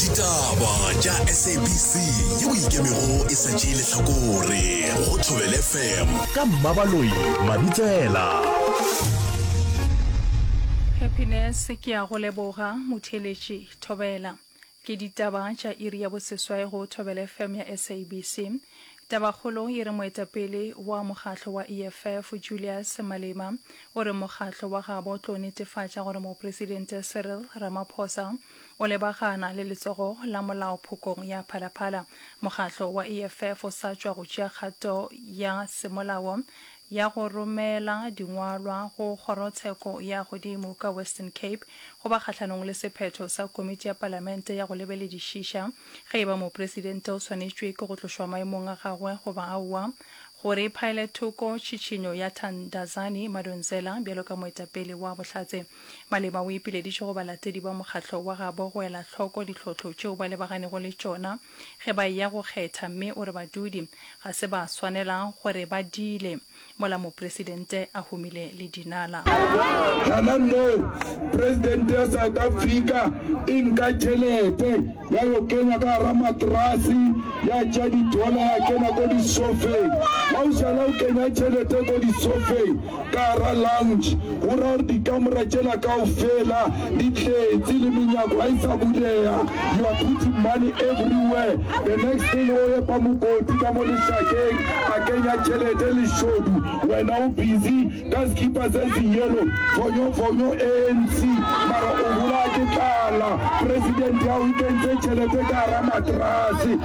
ditaba tša sabc ye o ikemego e sa tšee lehlakore go thobele fm ka mmabaloi mabitsela happiness ke ya go leboga motheletši thobela ke ditaba tša iri ya boseswai go thobele fm ya sabc Tabakgolo e re moetapele wa mokgatlo wa EFF, Julius Malema, o re mokgatlo wa gabo o tlo netefatša gore Mopresidente Cyril Ramaphosa o lebagana le letsogo la molao phokong ya Phalaphala. Mokgatlo wa EFF o sa tšwa go tšea kgato ya semolao ya go romela dingwalwa go kgorotsheko ya godimo ka Western Cape go ba kgahlanong le sephetho sa Komiti ya Palamente ya go lebeledišiša Ge e ba mopresidente o swanetšwe ke go tlošwa maemong a gagwe goba aowa, go re phaele thoko tšhitšhinyo ya Thandazani Madonsela bjalo ka moetapele wa Bohlatse, Malema o ipileditše go balatedi ba mokgatlo wa gabo go ela hloko ditlhohlo tšeo ba lebaganeggo le tšona ge ba eya go kgetha mme o re badudi ga se ba swanela go re ba diile. mola Mopresidente a humile le dinala. Hana moo, Presidente ya South Africa e nka tšhelete ya yo kenya ka gara matrasi, ya tša didola ya kena ko disofeng. Ha o šala o kenya tšhelete ko disofeng ka gara lounge, go ra gore dikamora tšela kaofela ditlhetse le menyako ga e sa bulega you are putting money everywhere the next thing o epa mokoti ka mo lešakeng a kenya tšhelete lešodu wena o busy ka sekipa se senyelo fonyofonyo anc mara o bolaya ke tlala president ya o kentse tšhelete ka gara matrase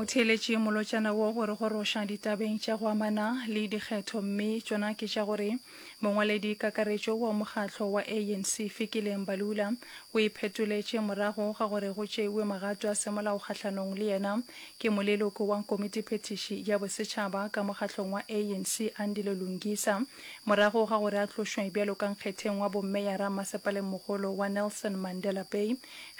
motheeletše molotšana wo gore go roša ditabeng tša go amana le dikgetho mme tšona ke tša gore mongwaledi kakaretšo wa mokgatlo wa anc fikileng balula o iphetoletše morago ga gore go tšeiwe magato a semolao kgahlanong le yena ke moleloko wa komitiphetiši ya bosetšhaba ka mokgatlong wa anc andile lungisa Morago ga gore a tlošwe bjalo ka nkgetheng wa bommeyara masepalemogolo wa Nelson Mandela Bay,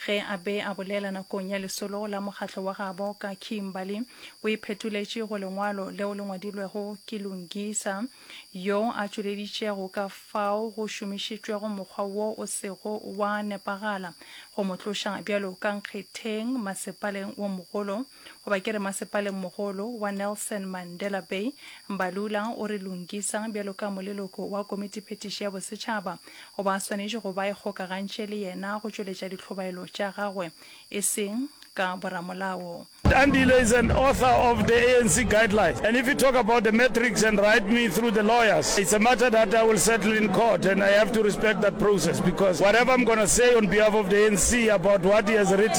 ge a be a bolela nakong ya lesolo la mokgatlo wa gabo ka Kimberly, o iphetoletše go lengwalo leo le ngwadilwego ke Lungisa, yo a tšweleditšego ka fao go šomišitšwego mokgwa wo o sego wa nepagala go mo tloša bjalo ka nkgetheng masepaleng wo mogolo. Goba ke re Masepaleng-mogolo wa Nelson Mandela Bay, Mbalula o re Lungisa bjalo ka moleloko wa Komitiphetiši ya Bosetšhaba o ba swanetše go ba ikgokagantše le yena go tšweletša ditlhobaelo tša gagwe, e seng ka boramolao. Tandile is an author of the ANC guidelines and if you talk about the matrix and write me through the lawyers, it's a matter that I will settle in court and I have to respect that process because whatever I'm gonna say on behalf of the ANC about what he has written,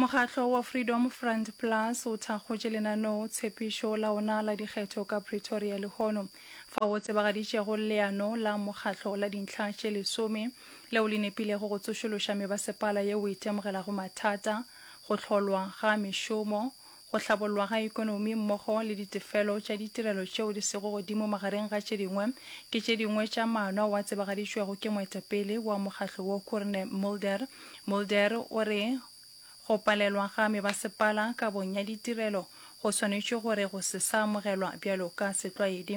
Mokgatlo wa Freedom Front Plus o thakgotše lenaneo tshepišo la ona la dikgetho ka Pretoria lehono, fao o tsebagaditšego leano la mokgatlo la dintlha tše lesome leo le nepilego go tsošološa mebasepala yeo e itemogelago mathata, go hlolwa ga mešomo, go hlabollwa ga ekonomi mmogo le ditefelo tša ditirelo tšeo di sego godimo magareng ga tše dingwe, ke tše dingwe tša maano ao a tsebagaditšwego ke moetapele wa mokgatlo wo Koorne Mulder. Mulder o re, Go palelwa ga mebasepala kabong ya ditirelo go swanetše gore go se sa amogelwa bjalo ka setlwaedi.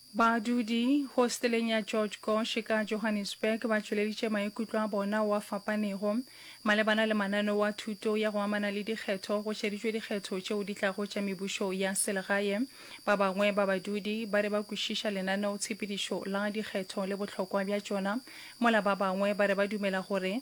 Badudi hosteleng ya George Gosch ka Johannesburg ba tšweleditše maikutlo a bona oa fapanego malebana le mananeo a thuto ya go amana le dikgetho go šeditšwe dikgetho tšeo di tlago tša mebušo ya selegae. Ba bangwe ba badudi ba re ba kwešiša lenaneotshepedišo la dikgetho le bohlokwa bja tšona mola ba bangwe ba re ba dumela gore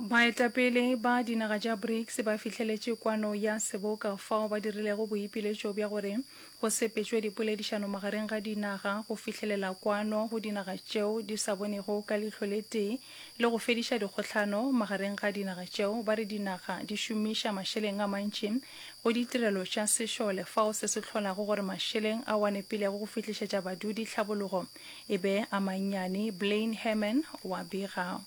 Baetapele ba dinaga tša BRICS ba fihleletše kwano ya seboka fao ba dirilego boipiletšo bja gore go sepetšwe dipoledišano magareng ga dinaga go fihlelela kwano go dinaga tšeo di sa bonego ka leihlo le tee le go fediša dikgohlano magareng ga dinaga tšeo ba re dinaga di šomiša mašeleng a mantši go ditirelo tša sešole fao se se hlolago gore mašeleng ao a nepilego go fihlišetša badudi tlhabologo e be a mannyane Blaine Herman wa bega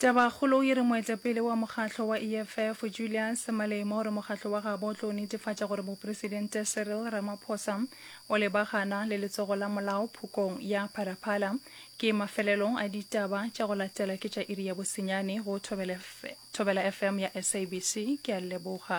Tabakgolo e re moetapele wa mokgatlo wa EFF, Julius Malema o re mokgatlo wa gabo o tlo netefatša gore mopresidente Cyril Ramaphosa o lebagana le letsogo la molao phokong ya Phalaphala. Ke mafelelo a ditaba tša go latela ke tša iri ya bosenyane go Thobela FM ya SABC. Ke a leboga.